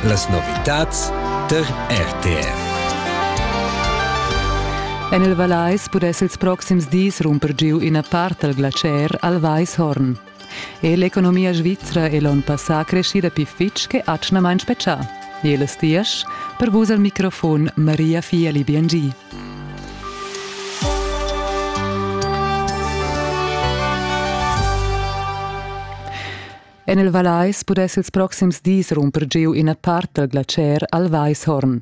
Las novitads tar RTR. En il Vallais pudess ils proxims dis rumper giu ina part dal glacier al Weishorn. E l'economia svizra è l'onn passà creschida pli fitg che atgnamain spetgà. Jeles Dias, per vus al microfon Maria Fieli Biangi. En il Vallais pudess ils proxims dis rumper giu ina part dal glatscher al Weishorn.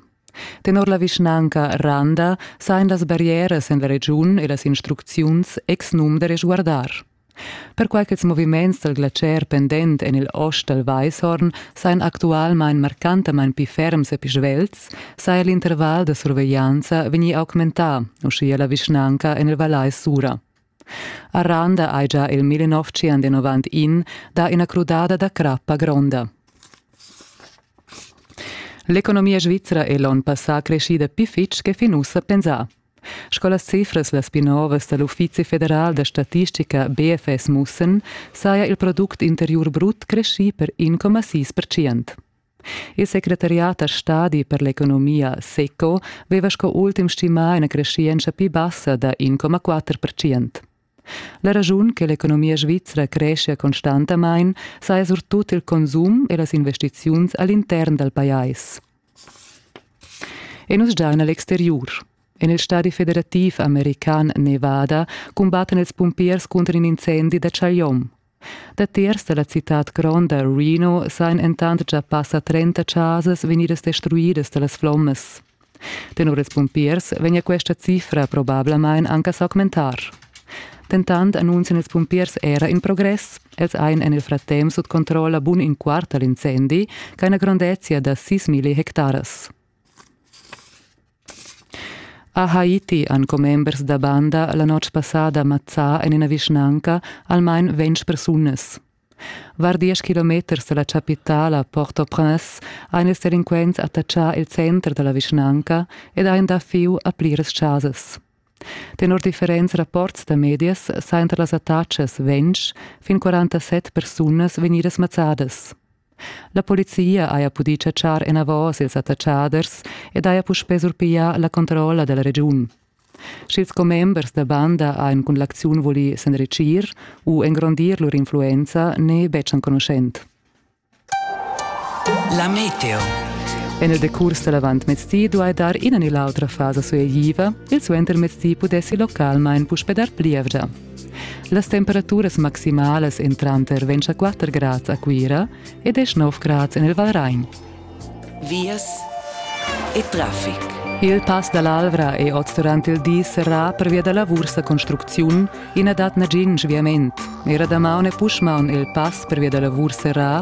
Tenor la vischnanca Randa sain las barrieras en la regiun e las instrucziuns exnum da resguardar. Perquai ch'ils moviments dal glatscher pendent en il ost dal Weishorn sain actualmain marcantamain pli ferms e pli svelts, saja l'interval da surveglianza vegnì augmentà, uschia la vischnanca en il Vallais Sura. A Randa hai già il 1991 dà ina crudada da crappa gronda. L'economia svizra è l'onn passà creschida pli fitg che fin ussa pensà. Sco las cifras las pli novas da l'Uffizi federal da statistica BFS mussen, saja il product interiur brut creschì per 1,6%. Il secretariat da stadi per l'economia SECO veva sco ultim stimà ina creschientscha pli bassa da 1,4%. La raschun che l'economia svizra creschia constantamain saja surtut il consum e las investiziuns all'intern dal pajais. E nus giain a l'exteriur. En il stadi federativ american Nevada cumbattan ils pumpiers cunter in incendi da Chagliom. Datiers dalla citad gronda Reno sain entant già passa trenta chasas vegnidas destruidas dallas flommas. Tenor ils pumpiers vegnia questa cifra probablamain anca s'augmentar. Dentant annunzian ils pumpiers era in progress. Els ein en il frattem sut controlla bun in quart dall'incendi, ch'ha una grondezia da 6.000 hectares. A Haiti han commembers da banda la notg passada mazzà en ina vischnanca almain ventg persunas. Var diesch kilometers da la chapitala Port-au-Prince ha ils delinquents attaccà il center da la vischnanca ed han dà fieu a pliras chasas. Tenor differents rapports da medias sajan tar las attaccas ventg fin 47 persunas vegnidas mazzadas. La polizia haja pudì chatschar enavos ils attatschaders ed haja puspè surpiglià la controlla da la regiun. Sch'ils commembers da banda han cun l'acziun vulì s'enritgir u engrondir lur influenza n'è betg enconuschent. La meteo. En il decurs da l'avantmezdi duai dar ina ni l'autra fasa sueigiva, il suentermezdi pudessi localmain puspè dar plievgia. Las temperaturas maximalas en tranter ventg a quatter grads a Cuira e desch-nov grads en il Valrain. Vias e traffic. Il pass dall'Alvra è oz durant il di serrà pervia da lavurs da construcziun e na dat nagin sviament. Era damaun e puschmaun il pass pervia da lavurs serrà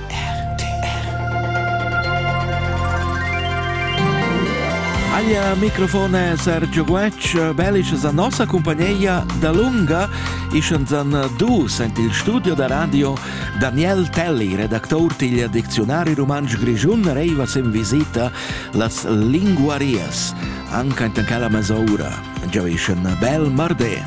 Alia microfon è Sergio Guetg, bellischas a nossa cumpagneia da lunga. Ischens an du sent il studio da radio Daniel Telli, redactor tigl diczionari rumantsch grischun, reivas in visita las linguarias, anca intan cala mesoura. Giaviscen bel mardé!